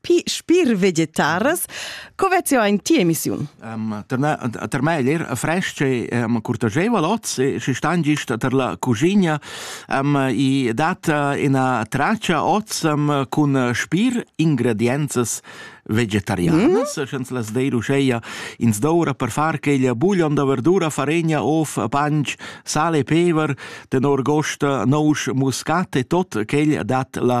pi spir vegetaras. Co vezio in ti emissiun? Um, per me, per me er fresc e um, curtageval oz e si stan gist per la cucina um, i dat ina traccia oz um, cun spir ingredienzas vegetarianas, mm. sch'ens las deir uscheia ins doura per far queglia buglion da verdura, faregna, of, panch, sale e pever, tenor gost nous muscat e tot quegl dat la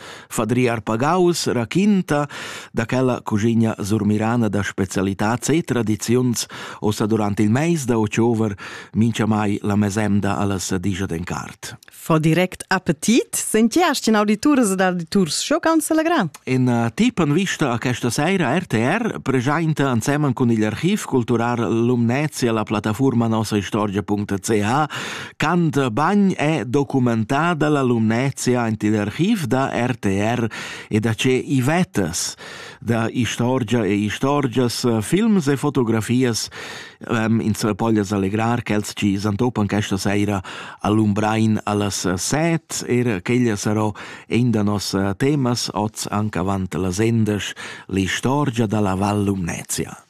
Fadriar Pagaus raquinta da quella cugigna surmirana da specialitats e tradiziuns ossa durant il meis da october minchamai la mesemda alla sadigia d'Encart. Fa direct appetit, sentiast in audituras ed auditurs schoccants selegrà. In uh, tip en vista a questa sera RTR presenta insieme con il archiv cultural Lumnezia la piattaforma nossa istorgia.ch Canta bagn è documentada la lumnezia ant il archiv da RTR e da ce Ivettas, da istorgia e istorgias, films e fotografias. Um, ins poglias allegrar ch'els ci santopan questa seira all'Umbrain allas set, er ch'ella sarò in da nos temas oz anche avant la sendes, l'istorgia dalla Val Lumnezia.